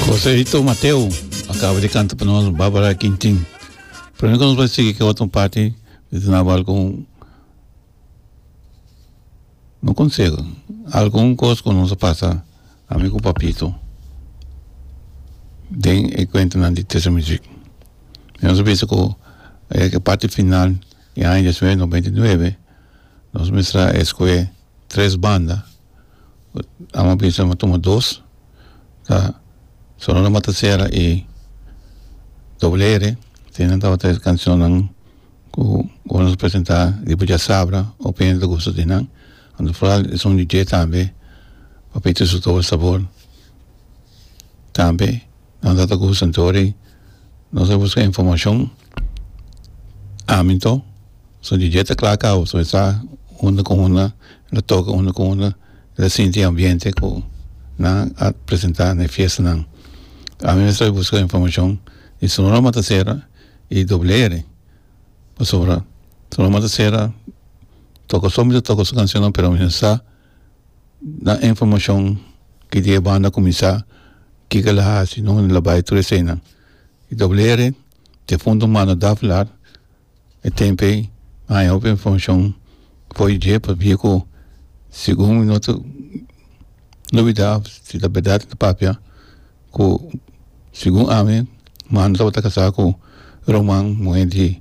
Joséito Mateo acaba de cantar para nós Bárbara Quintin. Primeiro que nós vamos seguir que outra parte de naval com no conselho. Algum coisa que nós passa amigo papito. Den e cuenta na de terça music. Nós pensa que é que parte final em ano 1999 nós mostra escoe três banda Amo a bisa bo tuma dos ta solo lo mata sera y doble ere tin nan tabata e cancionnan cu ora nos presenta tipo diasabra o pende ta gusto di nan anto foral e son di dje tambe papito su tobel sabor tambe. Nan ta ta ku Santori nos ta buska informashon aminto so di dje ta kla kau so e sa unda ku unda e ta toka unda ku unda e ta sinti e ambiente ku nan a presenta na e fiestanan ami mes ta buska informashon di Sonora Matasera i Doblere pasobra Sonora Matasera toka so mi ta toka su kanshonnan pero ami no sa nan e informacion ki di e banda cuminsa kico el a haci no lo bay tur esena y doble ere difunto humano Daflar e tempo haya hopi informacion fo'i dje pa bia cu segun mi no ta lubida si ta berdad si ta papia cu segun ami mano tabata casa cu Roman muhe di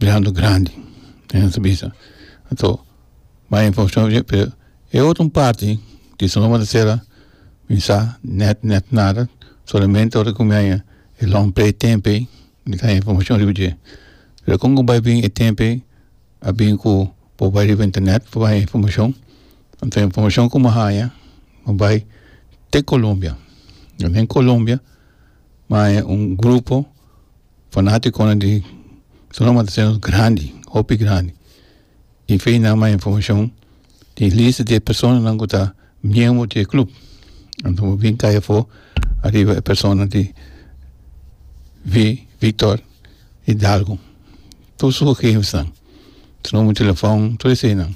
mirando grandi den nusu bisa anto bay informacion aver pero e otro un parti tin so loma ta cera mi sa net net nada solamente ora cu mi a yega e long play tempey mi ta gana informacion riba dje pero con cu bay bin e tempey a bin cu por bay riba internet por bay informacion anto informacion cu mi a haya mi bay te colombia den colombia mi a haya un grupo Fanaticonan di Sonoma ta sendo grandi hopi grandi y fe nan mas informacion di e lista di e personanan cu ta miembro di e club anto bo bin caya afuer ariba e persona di Victor Hidalgo tur su gegevennan su numero telefon tur esayinan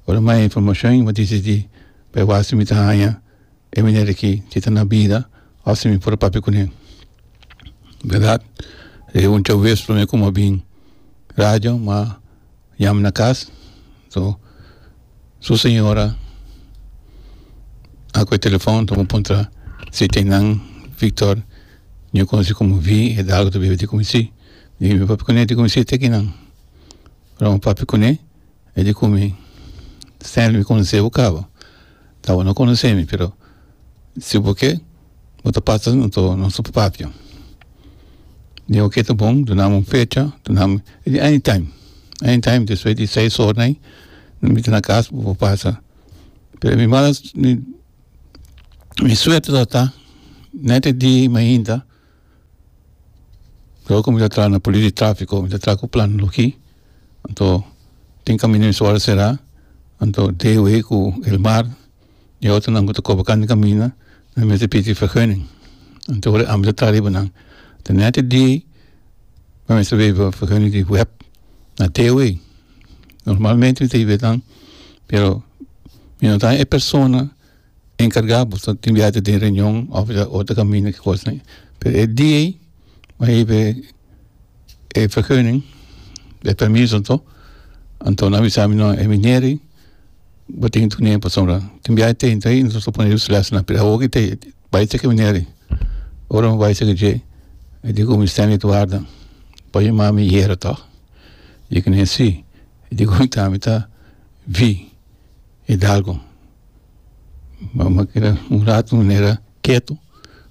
ora mas informacion y bo dici di bay wasi mi ta haya. E manera ki e ta na bida a si mi por a papia kune berdad e un chau bes prome ku mi a bin radio mi a yama na kas so su señora a kohe telefon ta mi puntra si tin nan Victor ña konosi komo vi e dalgo ta biba di komo si mi yami papia kune di komo si ta kinan ora mi papia kune e di komo Stanley mi konosebo kaba. ta bo no conoce mi pero si bo ke bo ta pasa nos patio di oke ta bon dunami un fecha dunami di any time any time despues di seis ora ayi mi miti na cas bo pasa pero mi mala mi suerte lo ta net e dia mainta. Lo ku mi ta traha na polis di trafiko mi ta traha ku plan loki anto tin kaminda mi sual sera anto dw ku el mar y otro nan ku ta koba kan di kaminda nan mester pidi verguning anto ora ami ta traha riba nan ta nete di nan mester weba verguning di web na dw normalmente mi ta hibia tan pero mi no ta e persona. enkargá bo ta tin biaha ta den reunion òf o ta kaminda ki kosnan ei. Pero e dia ei bo a hebe e vergunning, e permiso anto, anto nan a bisa mi, no, e minera ei bo tin tur nemen pasobra tin biaha ta entra ei, nos ta pone lus lèsnan. Pero awo ki ta e bai caki e minera ei, ora mi bai caki dje, mi di ku Mister Edwarda, por yama mi yera tòg? I di ku mi, sí. I di ku mi, ta, mi ta ví Hidalgo. Mama keda un rato manera ketu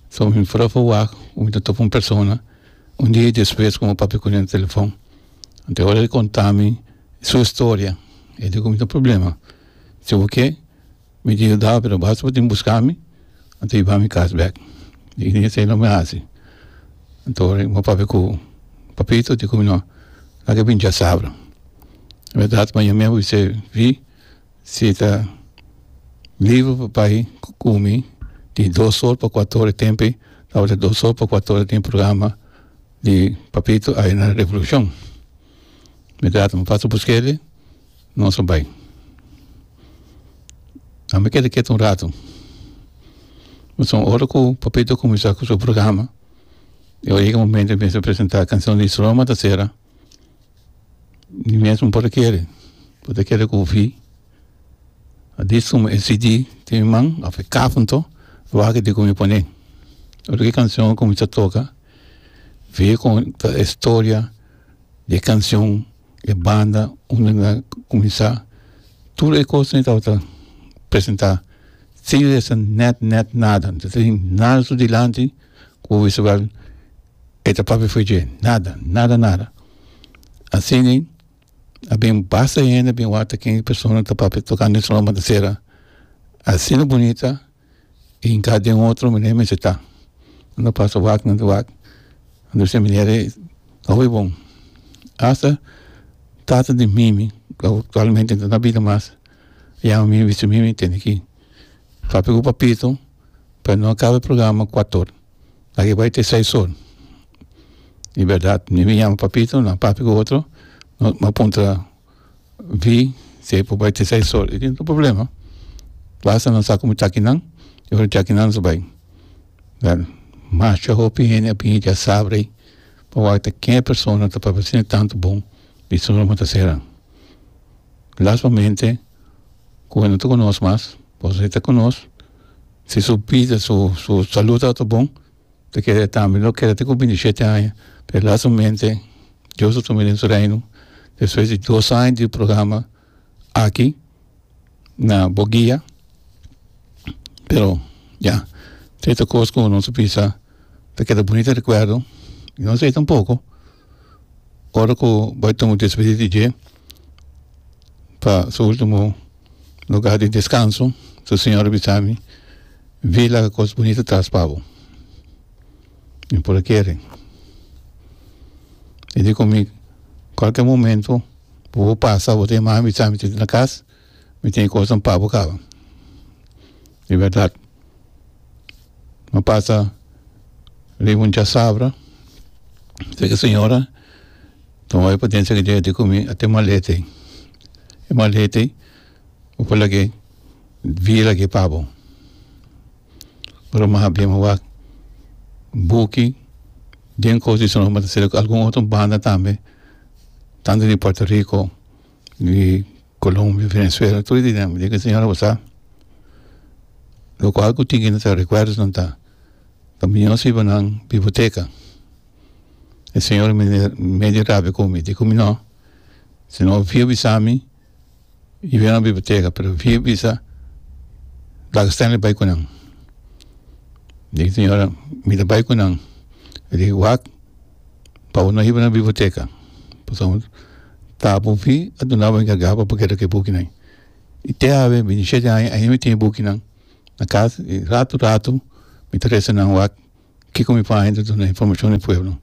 so mi fora fo wak ku mi ta topa un persona un dia despues komo papia kune na telefon te ora e kontami su historia e di kumina problema se por ke mi ta yudao pero basta bo tin buskami bo ta yubami kas bek i di esei lo mi hasi anto mi papia ku papito di kuminua lag'e binchasabra verdad paña mi a bis'e fi Si ta liber pa bai cu cumi di dos or pa cuato or e tempe tabata dos or pa cuato or e tin programa di papito aye na revolucion me da ata paso buskedi nos a bai a me keda ketu un rato pasobra so ora cu papito a cuminsa cu su programa y ora yega momento di mester presenta cancion di Istroma ta cera. Mi mesmo por ta kere por ta kere kofi a dis komo e cd tin mi man of e kafon to lo aki diko mi pone ora ki kancion a kuminsá toka fe kon ta e storia di e kancion e banda unda a kuminsá tur e kos me tabata presentá sin resa nèt nèt nada nta tabata nada su dilanti ku wisawèl. E ta papia fo'i dje, nada, nada, nada. Asina a bin basta hende a bin wak ta ken e persona ta papia tokante e salon matasera asina bunita i in kaba den otro manera mester ta. Nan ta pasa wak, nan ta wak, nan ta bisa manera e owe bon. Asta tata di mimi, cu actualmente no ta na bida mas, a yama mimi a bisa mimi, tene ki papia cu papito pa no kaba e programa kuator. Aki bai te seis or. Di berdad mi bin yama papito na papia ku otro no a puntra vi si e por bai te seis or i tin otro problema basta nan sa komo chakinan i ora chakinan so bai well masha hopi hende a bini dia sabra ei pa wak ta ke persona ta papia asina tantu bon di su ruma ta sera lastimamnte komo nan ta konos mas pasobra e ta konos. Si su bida, su su salud ta ta bon ta kere e tambe lo kere ata ku binti shete aña pero lastamente Dios ta tuma e den su reino despues di dos aña di programa aki na bo guia pero ya ta hita kos ku nos ta bisa ta keda bunita rekuerdo i nos ei tampoco ora ku bai tuma despedi di dje pa su ultimo. lugar di descanso su señor a bisa mi vi laga cos bunito tras pa bo mi por a kere y dico mi cualkier momento bo por pasa bo ta yaman a bisa mi tin na cas mi tin e cosnan pa bo caba y verdad. Lo pasa riba un chasabra tek e señora tuma e potencia ke dje ku mi a te malete e malete bo por lag'e bie lag'e pa bo bo lo maha bien bo wak buki den kosi sino bo ta sali ku algun otro banda tambe tanto di puerto rico. di colombia venezuela tur di nan di señora bo sa locual cu tinen nan ta recuerdonan ta pa mi no sibi nan biblioteca e señor medio rabia con mi di cu mi no si no via bisa mi i wen na biblioteca pero via bisa dag stanley bai cu nan mi di señora mi ta bai cu nan mi di wak pa bo no hiba na biblioteca pasobra ta bo fi a duna bo encarga pa bo keda cu e bukinan y te awe bini shete aña aina mi tin e bukinan na cas y rato rato mi ta resa nan wak kico mi paña ta duna informacion e pueblo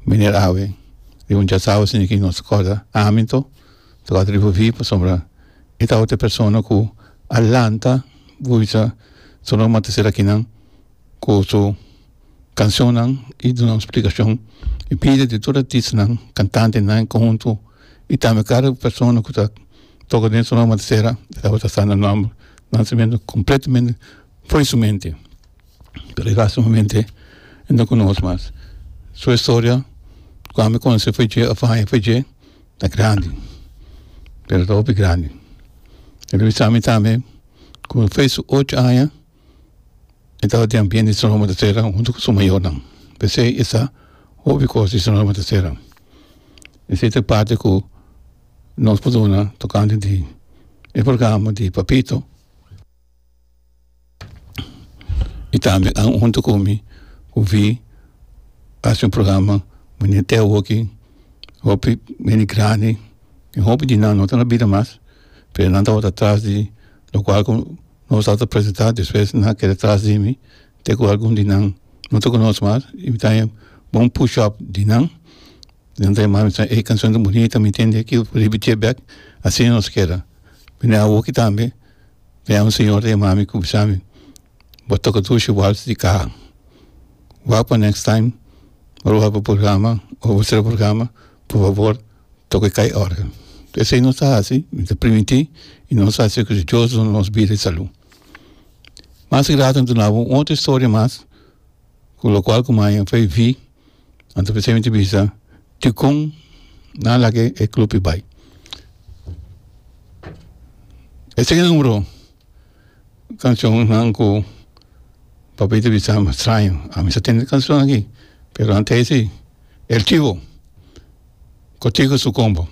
meneer awe riba un chas awe sindi ki nos recorda ami to ta corda riba fi pasobra e ta otro persona cu a lanta bo bisa solo mata sera kinan cu su cancionnan y duna un splicacion y pide di tur artistanan, cantantenan y conhunto y tambe cada persona cu ta toca den Sonora Matasera ta tabata sa nan nomber, nan cimentonan completamente for di su mente pero e hasta e momente e no conoce mas. Su historia cuando me conoce fue dje of aña fue dje ta grandi pero ta hopi grandi e lo bisa mi tambe cu fue su ocho aña e tabatin a biende su nome ta sera huntu ku su mayornan, p'esei e sa hopi kos di su nome ta sera. Esei ta e parti ku nos por duna tokante di e programa di Papito i tambe huntu ku mi ku vi hasi un programa manera te awoki hopi hende grandi i hopi di nan no ta na bida mas pero nan tabata atras di lokual ku Nos a ta presenta despues nan a keda tras di mi te cu algun di nan no ta conoce mas y mi ta haña bon push up di nan y nan ta yama mi ta e cancion ta bunita mi tende aki por repiti'e bek asina nos keda bini awoki tambe ta yawe un señor ta yama mi cu bisa mi bo toca dushi wals di caha wak pa next time ora bo haga programa ora bo traha programa por fabor toca e kai orde, esei nos ta hasi nos ta primiti y nos ta hasi cu dios duna nos bida y salud, mas y later duna bo un otro historia mas cu locual cu maya fai vi anto p'esei mi ta bisa dicon nan a laki e club y bai, esei nan oro. cancionnan cu papia ta bisa mi straño ami sa tende cancion aki pero ante esi el chivo cutico su combo.